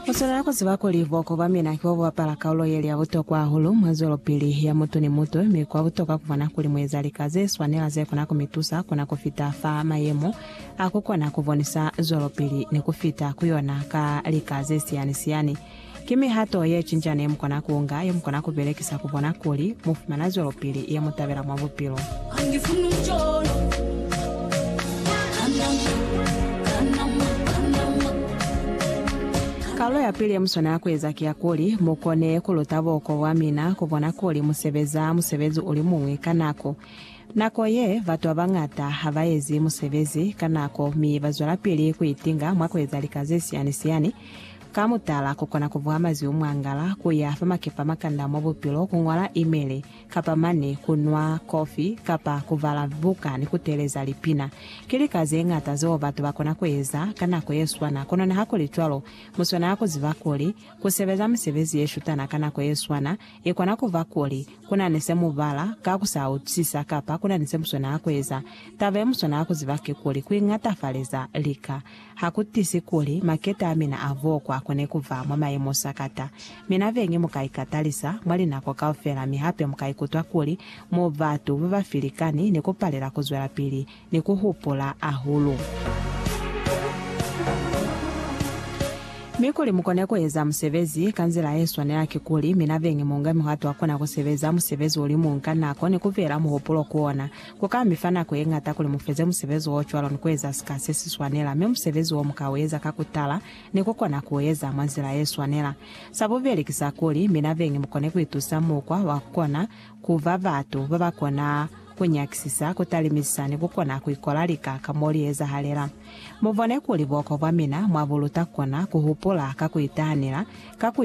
Mu swanela ku ziba kuli buhoko bwa mina ki bo bu bapala kaulo ye li ya butokwa hahulu mwa zwelopili ya mutu ni mutu, mi kwa butokwa ku bona kuli mu eza lika ze swanela ze kona ku mi tusa ku na ku fita fa mayemo a ku kona ku bonisa zwelopili ni ku fita ku yona ka lika ze siyani-siyani. Ki mihato yecinca nemukona kuunga yemukona kubelekisa kubona kuli mufumana zwelopili yemutabela mwa bupilo? Kalulo yapili yemuswanela kueza ki ya kuli mukone kuluta buko bwamina kubona kuli musebeza musebezi ulimuñwi ka nako. Nako ye, batu babañata habaezi musebezi ka nako mi bazwelapili kuitinga mwa kueza lika zesiani-siani. Ka mutala, ku kona ku buha mazwi o mwangala, ku ya fa makefa a makanda mwa bupilo, ku ñola imeli, kapa mane ku nwa kofi, kapa ku bala buka ni ku teeleza lipina. Ki lika ze ñata zeo batu ba kona ku eza ka nako ye swana. Kono nihakulicwalo, mu swanela ku ziba kuli, ku sebeza misebezi ye shutana ka nako ye swana, i kona ku ba kuli, ku na ni se mu bala ka ku sa utwisisa kapa ku na ni se mu swanela ku eza. Taba ye mu swanela ku ziba kikuli, ku iñatafaleza lika. Ha ku tizi kuli maketa a mina a vokwa ku ne ku ba mwa mayemo sakata, mi na beñi mu ka ikatalisa mwa linako kaufela mi hape mu ka ikutwa kuli mu batu ba ba filikani ni ku palela ku zwelapili ni ku hupula hahulu. Mi kuli mu kone ku eza musebezi ka nzila ye swanela ki kuli mina beñi mu nge muhato wa kona ku sebeza musebezi ulimuñi ka nako ni ku beela muhupulo ku ona. Ku ka mi fa nako ye ñata kuli mu feze musebezi wo cwalo ni ku eza sika se si swanela, mi musebezi wo mu ka u eza ka ku tala ni ku kona ku u eza mwa nzila ye swanela. Sa bubeli ki sa kuli, mi na beñi mu kone ku itusa mukwa wa ku kona ku ba batu ba ba kona ku nyakisisa, ku talimisa, ni ku kona ku ikola lika ka mo li ezahalela. Mu bone kuli buhokwa bwa mina mwa bu luta ku kona ku hupula ka ku itahanela, ka ku